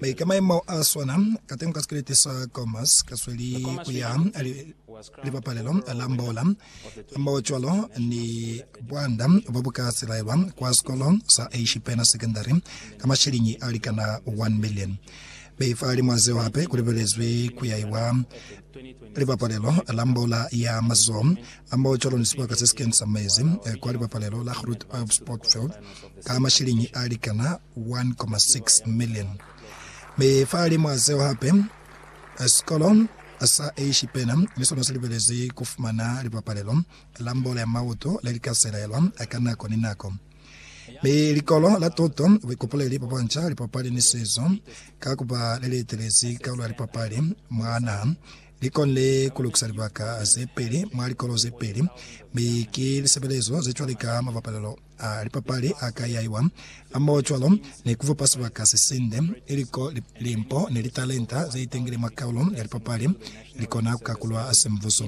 Be ka maimo a swana, ka teng ka sikeleti sa Commerce, ka sweli ku ya Libapalelo la Mbola, hamohocwalo ni bwanda bo bu ka silaelwa kwa sikolo sa Ashipena Secondary ka mashiliñi a likana 1 million. Be fahalimw'a zeo hape ku lebelezwi ku yaiwa Libapalelo la Mbola ya Mazoho Ambaho cwalo ni sibaka se si keni sa mezi kwa libapalelo la Groot Oeuvre Sport Field ka mashilingi a likana 1.6 million. Mi fahalimw'a zeo hape, sikolo sa Eishipena ni sona si libelezi ku fumana libapalelo la mbolo ya mauto le li ka selaelwa ka nako ni nako. Mi likolo la tuto, buikopoleli bwa banca, lipapali ni sizo, ka ku ba le li etelezi kaulo ya lipapali mwa naha, Li konile ku lukisa libaka ze peli mwa likolo ze peli, mi ki lisebelezo ze cwale ka mabapalelo a lipapali a ka yaiwa hamoho cwalo ni ku fupa sibaka se sinde, ili ko limpo ni litalenta ze itengile mwa kaulo ya lipapali li kona ku kakulwa ha semvuso.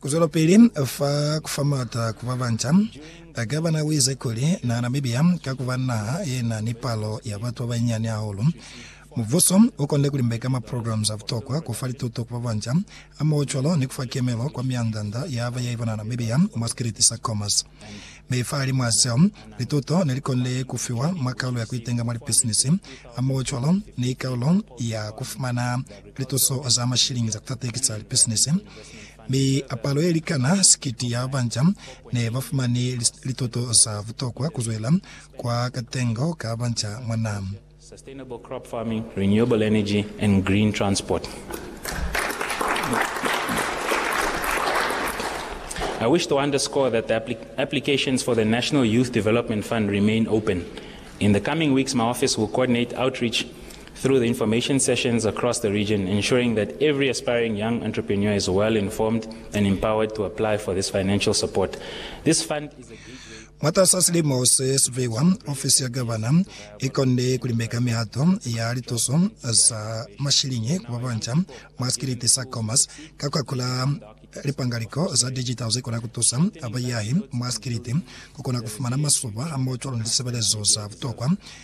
Ku zwelapili fa ku fa m'ata ku ba banca, Gavana u ize kuli, Na Namibia, ka ku ba naha ye na ni palo ya batu ba banyinyani hahulu, mubuso u konde ku limbeka ma programs a butokwa, ku fa lituto ku ba banca, hamohocwalo ni ku fa kemelo kwa mianda-nda ya ba ya ipona Namibia mwa sikiliti sa Khomas. Mi fahalimw'a seo, lituto ne li konde ku fiwa mwa kaulo ya ku itenga mwa lipisinisi, hamohocwalo ni kaulo ya ku fumana Lituso za mashilingi za kutateki za lipisinisi mi apalo ye likana sikiti ya banja ne ba fumani lituto za butokwa ku zwela kwa katengo ka banja mwa naha. Sustainable crop farming, renewable energy and green transport. I wish to underscore that the applications for the National Youth Development Fund remain open. In the coming weeks, my office will coordinate outreach through the information sessions across the region ensuring that every aspiring young entrepreneur is well informed and empowered to apply for this financial support. This fund is a gateway Mwatas'a silimo se siveiwa, ofisi ya Gavana i konde ku limbeka mihato ya lituso za mashiliñi ku babanca mwa sikiliti sa Khomas ka ku akula lipangaliko za digital ze kona ku tusa baiyahi mwa sikiliti ku kona ku fumana masuba hamoho cwalo ni lisebelezo za butokwa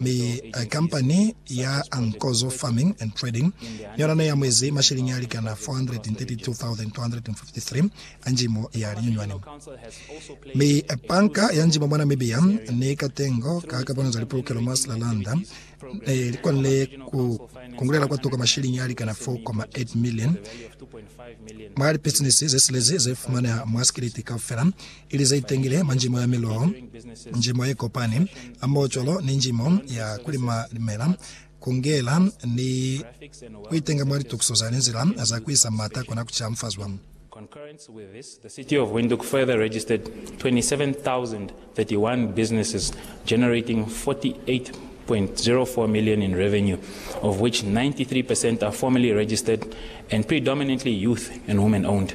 Mi kampani ya Nkozo Farming and Trading ni yona neyamwezi masheleñi alikana 432,253 a njimo ya linyunywani. Mi Banka ya Njimo mwa Namibia ni katengo ka kakono za lipulukelo mwa Slalanda nelikone ku kungulela kwatuka masheleñi alikana 4.8 million mwa lipisinisi zesilezi zefumaneha mwa Sikiliti kaufela ili ze itengile mwa njimo ya miloho, njimo ye kopani hamoho cwalo ni njimo ya ku lima limela, ku ngela ni ku itenga mwa litukiso za linzila za ku isa m'ata kona ku camfazwa. Concurrent with this, the City of Windhoek further registered 27,031 businesses generating 48.04 million in revenue, of which 93 percent are formally registered and predominantly youth and women owned.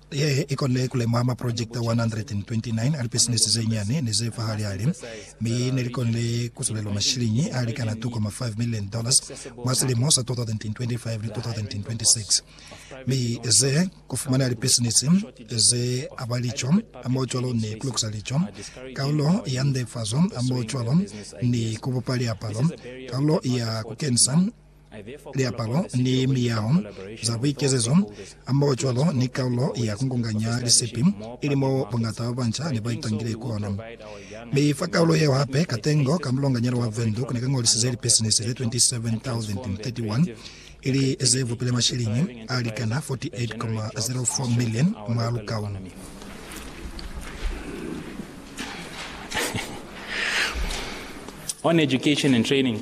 Ye i konile ku lemwa maprojekiti 129 a lipisinisi ze nyani ni ze fahali-hali, mi ne li konile ku sulelwa mashiliñi a likana 2.5 milioni dollars mwa silimo sa 2025 ni 2026. Mi ze ku fumaneha lipisinisi ze aba lico hamohocwalo ni ku lukusa lico, kaulo ya ndefazo hamohocwalo ni ku bupa liapalo, kaulo ya ku kenisa liapalo ni miyaho za buikezezo, hamohocwalo ni kaulo ya kungunganya lisipi, ili moo bongata ba banca ne ba itangile kona. Mi fa kaulo yeo hape, katengo ka mulonganyana wa Windhoek ne ka ñolisize lipisinisi ze 27,031, ili ze vupile mashiliñi a likana 48,04 million mwa lukaulo. On education and training.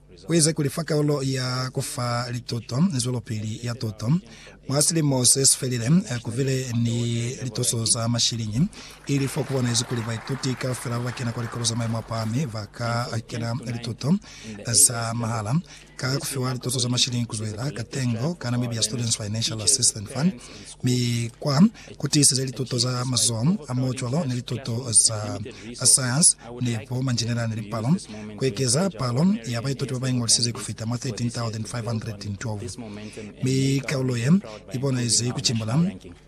Ku eza kuli fa kalulo ya ku fa lituto zwelopili ya tuto mwa silimo se si felile ku bile ni lituso za mashiliñi, ili fo ku bonahezi kuli baituti kaufela ba ba kena kwa likolo za maimo a pahami ba ka kena lituto za mahala ka ku fiwa lituso za mashiliñi ku zwela ka tengo ka Namibia Students Financial Assistance Fund mi kwa ku tiiseza lituto za mazoho a mo cwalo ni lituto za sayansi ni bo manjinela ni lipalo, ku ekeza palo ya baituti ba ba iñolisize ku fita mwa 13,512. Mi kaulo ye i bonahezi ku cimbula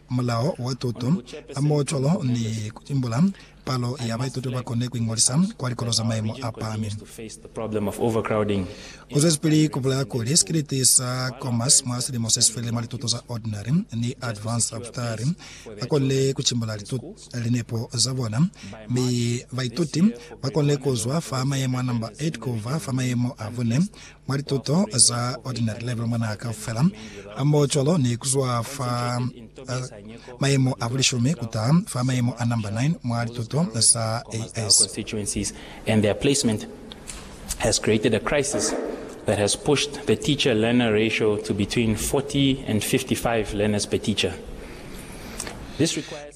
mulao wa tuto a mo cwalo ni ku imbula Palo ya baituti ba koni ku iñolisa kwa likolo za maimo a pahami. U zwezipili ku bulaya kuli, Sikiliti sa Commerce mwa silimo se si felile mwa lituto za Ordinary ni Advanced Abutari ba konile ku cimbula linepo za bona, mi baituti ba konile ku zwa fa mayemo a namba 8 ku ba fa mayemo a bune Mwa lituto za Ordinary Level mwanaa kaufela a mbo cwalo ni kuzwa fa mayemo a bulishumi kutaha fa mayemo a namba 9 mwa lituto za AS. constituencies and their placement has created a crisis that has pushed the teacher-learner ratio to between 40 and 55 learners per teacher.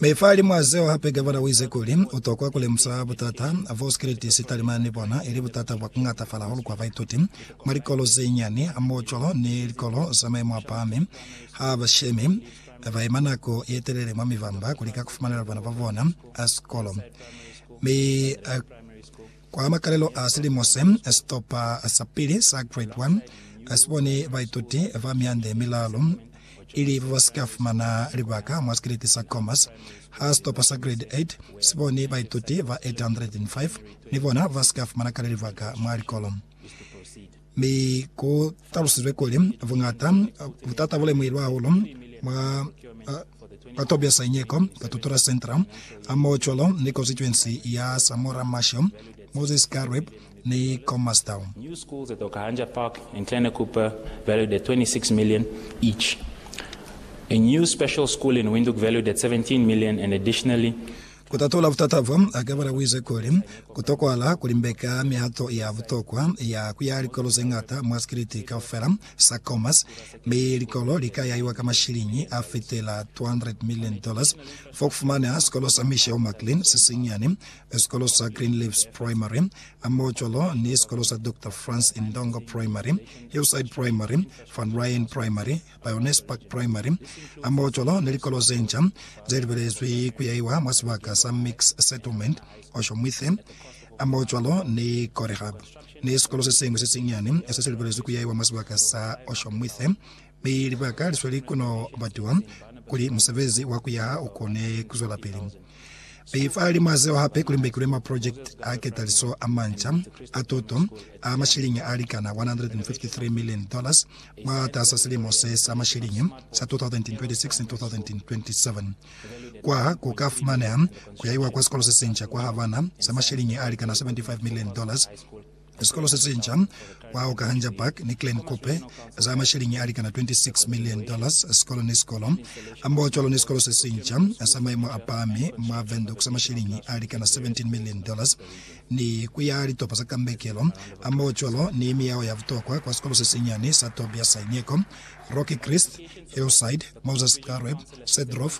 Mi fahalimw'a zeo hape Gavana u ize kuli u tokwa ku lemusa butata bo sikiliti si talimana ni bona, ili butata bwa ku ngatafala hahulu kwa baituti mwa likolo ze nyani hamohocwalo ni likolo za maimo a pahami. Ha ba shemi ba ima nako ye telele mwa mivamba ku lika ku fumanela bana ba bona sikolo, mi a. Kwa makalelo a silimo se, sitopa sa pili sa Grade One si bone baituti ba miande milalu i li ba ba si ka fumana libaka mwa sikeleti sa Commerce, ha sitopa sa Grade Eight si bone baituti ba 805 ni bona ba si ka fumana kale libaka mwa likolo. Mi ku talusizwe kuli, buñata butata bu lemuhilwe hahulu mwa ba Tobias Anyeko, ka Tutura Centre, hamohocwalo ni konsituensi ya Samora Machel, Moses Kareb ni Comastown. New school ze toka hanja park and Kleine Kuppe valued at 26 million each. A new special school in Windhoek valued at 17 million and additionally. Ku tatula butata bo, Akebela u ize kuli, Ku tokwahala ku limbeka mihato ya butokwa ya ku ya likolo ze ñata mwa sikiliti kaufela sa Khomas, mi likolo li ka yahiwa ka mashiliñi a fitela 200 million dollars. Fo ku fumaneha sikolo sa Michelle McLean se sinyani, sikolo sa Greenleaves Primary, hamoho cwalo ni sikolo sa Doctor Franz Indongo Primary, Hillside Primary, Van Ryan Primary, Lioness Park Primary, Ambaotjolo ni likolo ze nca ze libelezwi ku yahiwa mwa sibaka sa Mix Settlement, Oshomwithe, Ambaotjolo ni Corehub, ni sikolo se siñwi se sinyani se si libelezwi ku yahiwa mwa sibaka sa Oshomwithe, mi libaka li sweli ku no batiwa kuli musebezi wa ku yaha u kone ku zwelapili. Be fa limo a zeo hape kuli mbekilwe maprojekiti a ketaliso a manca a tuto a mashilingi a likana $153 million mwatas'a silimo se sa mashilingi sa 2026 ni 2027. Kwa ku ka fumaneha ku yaiwa kwa sikolo se sinca kwa Havana sa mashilingi a likana $75 million. Sikolo se sinca kwa Okahandja Park ni Klein Kupe za masheleñi a likana 26 million dollars sikolo ni sikolo, hambahacwalo ni sikolo se sinca sa maimo a pahami mwa Windhoek sa masheleñi a likana 17 million dollars ni ku yaha litopa za kambekelo, hambahacwalo ni miyaho ya butokwa kwa sikolo se sinyani sa Tobias Saineko, Rocky Christ, Hillside, Moses Xarweb, Sedrov,